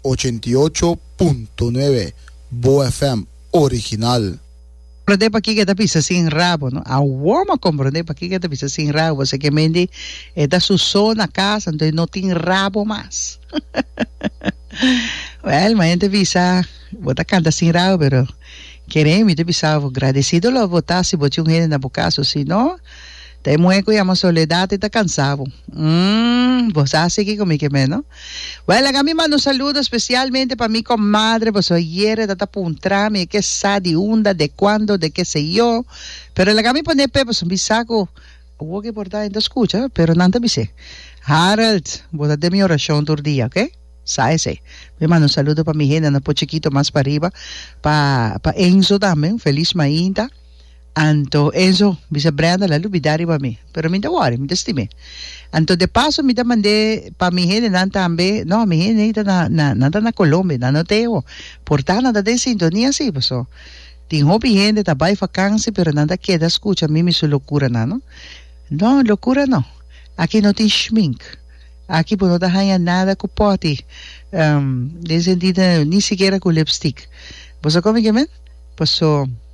Ochenta i ocho punto nuebe Bo FM original. Prende paki ke ta bisa sin rabo no awor m'a komprende paki ke ta bisa sin rabo paske ke mente e ta su so na kasa enton e no tin rabo mas wèl ma hente bisa bo ta kanta sin rabo pero kere mi ta bisa bo gradesido lo bo ta si bo tin un hende na bo kas osino Ta e muhe cu yama Soledad y ta cansa bo. Umm, bo sa sigui cu mi ke me no. Well, laga mi manda un saludo especialmente pa mi comadre, bo so ayer e ta ta puntra mi e ke sa, di unda, de cuando, de ke se yo. Pero laga mi pone pe, pasobra mi sa cu awor ke por ta hende a scucha, pero nan ta bis'é, Harold, bo ta den mi oracion tur dia, ok? Sa esei. Mi manda un saludo pa mi hendenan pochiquito mas pariba, pa, pa Enzo tambe, un feliz mainta. Anto Enzo bisa Brenda la lubida riba mi, pero mi ta wòri, mi ta stim'é. Anto de paso mi ta mand'é pa mi hendenan tambe, no, mi hende ei ta na, na, nan ta na Colombia, nan no ta ei awo. Por ta nan ta den sintonia si, paso tin hopi hende ta bai vakansi, pero nan ta keda skucha mi mi su lokuranan, no. No, lokura no. Aki no tin shmink. Aki bo no ta haña nada ku pòti, den sentido, ni sikiera ku lipstik. Bo sa kon mi ke men? Paso.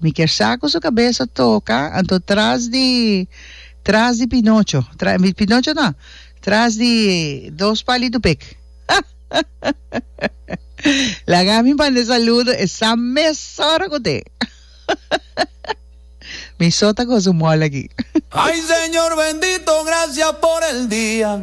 Mi kier sa cu su cabesa toca, anto tras di tras di Pinocho, tra, mi, Pinocho no, tras di dos palito pek. Laga mi manda e saludo e sa mes ora cu te. Mi so ta gozo mol aki. Ay Señor bendito gracias por el día.